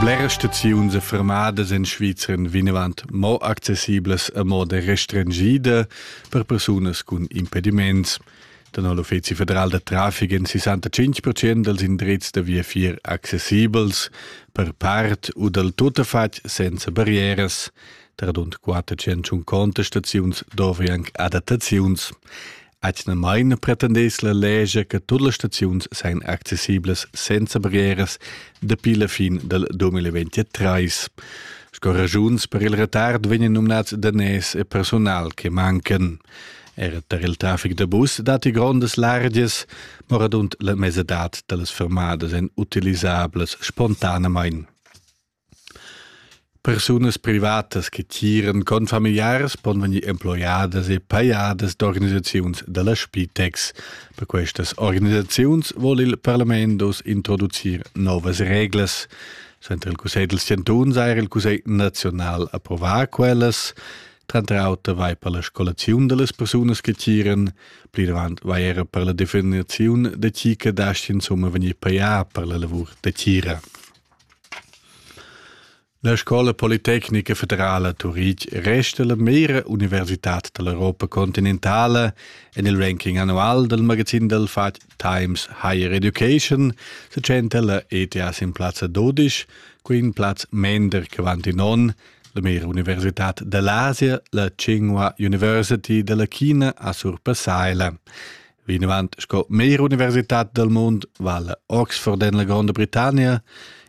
Bleras staziuns e fermadas en Svizra vinavant mo accessiblas a moda restringida per persunas cun impediments. Tenor l'Uffizi federal da traffic èn 65% dals indrizs da viafier accessibels per part u dal tuttafatg senza barrieras. Tar rund 450 staziuns dovri anc adattaziuns. Atgnamain pretendess la legia che tut las staziuns sain accessiblas senza barrieras dapi la fin dal 2023. Sco ragiuns per il retard vegnan nominats daners e personal che mancan. Er tar il traffic da bus datti grondas largias, ma radund la mesadad da las fermadas èn utilisablas spontanamain. Persunas privatas che tiran confamiliars pon vegnir emploiadas e pajadas d'organisaziuns da la Spitex. Per questas organisaziuns vul il parlament oz introducir novas reglas. Center il Cussegl dels Chantuns ha er il Cussegl naziunal approvà quellas. Tranter auter vai per la scolaziun da las persunas che tiran. Pli davant vai era per la definiziun da chi che dast insumma vegnir pajà per la lavur da tira. La Scola politecnica federala Turitg resta la meira universitad dall'Europa continentala en il ranking annual dal magazin dal fatg Times Higher Education se tschenta la ETH in plazza 12, qui in plaz mender che Vantinon, la meira universitad dall'Asia, la Tsinghua University dalla China a surpassaila. Vinavant sco meglra universitad dal mund vala Oxford en la Gronda Britannia,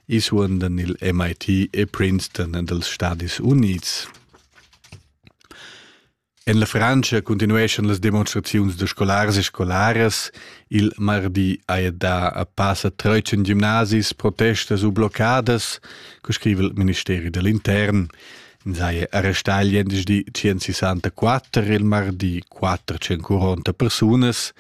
isuondan il MIT e Princeton dals Stadis Unids. En la Frantscha continueschan las demonstraziuns da scolars e scolaras. Il mardi haja dà a passa 13 gimnasis protestas u bloccadas, co scriva il ministeri dell'intern. Sai arrestà il gliendisdi 164 il mardi quatter tschencuronta persunas.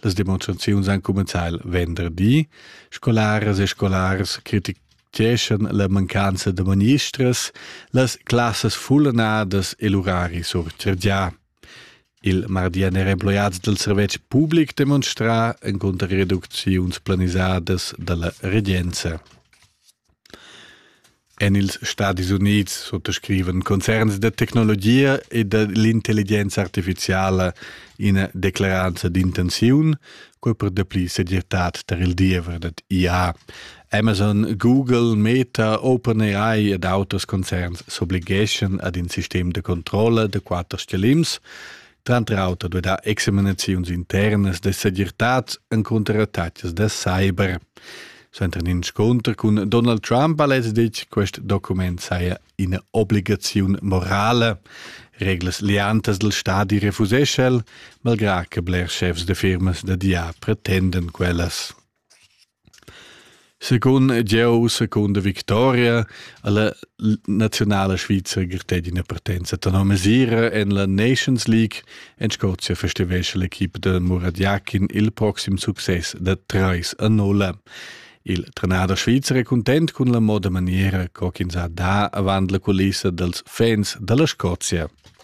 Las demonstraziuns han cumenzà il venderdi. Scolaras e scolars criticheschan la mancanza da ministras, las classas fullanadas e l'urari surchargià. Il mardian era emploiads dal servetsch public demonstrà encunter reducziuns planisadas da la regenza. En ils Stadis Unids suttascrivan concerns da tecnologia e da l'intelligenza artificiala ina declaranza d'intenziun, quai per dapli segirtad tar il diever dad IA. Amazon, Google, Meta, OpenAI ed auters concerns s'obligeschan ad in sistem da controlla da quatter stgalims, tranter auter da dar examinaziuns internas da segirtads encunter attacks da cyber. Suenter in inscunter cun Donald Trump ha lez ditg quest document saja ina obligaziun morale. Reglas liantas del stadi refusescha el, malgrà che blers chefs de firmas da dia pretenden quellas. Secund jeu, secunda victoria ha la naziunala svizra grattet ina partenza tenor mesira en la Nations League. En Scozia festivescha l'equipa da Muradjakin il proxim success da trais a nulla. Il trenader svizzer è content cun la moda maniera co ch'ins ha dà avant la culissa dals fans da la Scozia.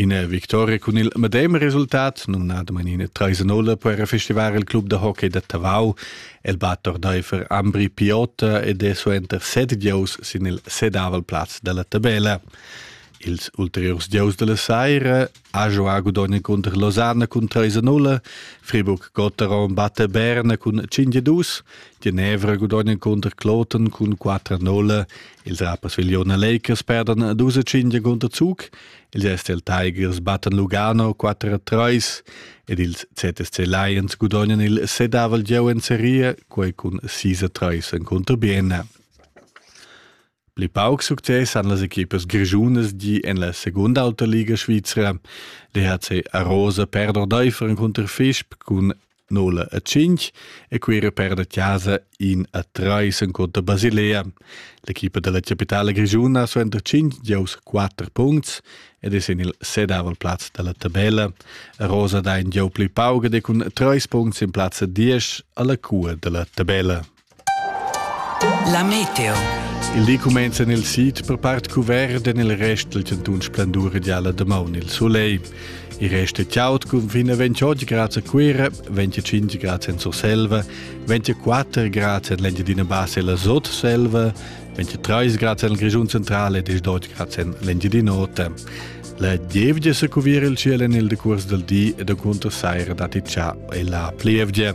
Ina victoria cun il medem resultat, numnadamain ina treisenola, po era festivar il club da hockey da Tavau. El bat ordaifer Ambri Piotta ed è suenter set gieus sin il sedavel plaz da la tabella. Ils ulteriurs gieus della saira ha giovà Gudogna cunter Losanna cun 3-0, Friburg Gotteron batte Berna cun 5-2, Genevra Gudogna cunter Kloten cun 4-0 Ils rapers viliona Lakers perdan dus e cinque contro Zug, ils STL Tigers battan Lugano 4-3 ed ils ZSC Lions gudognan il sedavel gieu en serie, quei cun 6-3 en contro Bienna. Pli pauc success han las equipas grischunas di en la segunda auta liga svizra. Le HC Arosa perd ordaifer in contro Fischb cun nola a cinch e quera perda chasa in a trais en conta Basilea. L'equipa della capitale grigiuna suenter 5 giows 4 punts ed es in il sedavel plaz della tabella. Rosa dà in gieu pli pauga de cun 3 punts in plazza 10 alla cua della tabella. La meteo. Il di cumenza nel sid per part cuvert en il rest del cantun splendur ideala damaun il soleil. Il rest è chiaut cun fin a 28 gradi a Cuira, 25 gradi en Surselva, 24 gradi en l'Engiadina Bassa e la Sotselva, 23 gradi en il Grigiun Centrale e 18 gradi en l'Engiadina Ota. La gievgia se cuvira il cielo nel decurs del di e da cunter saira dati già e la plievgia.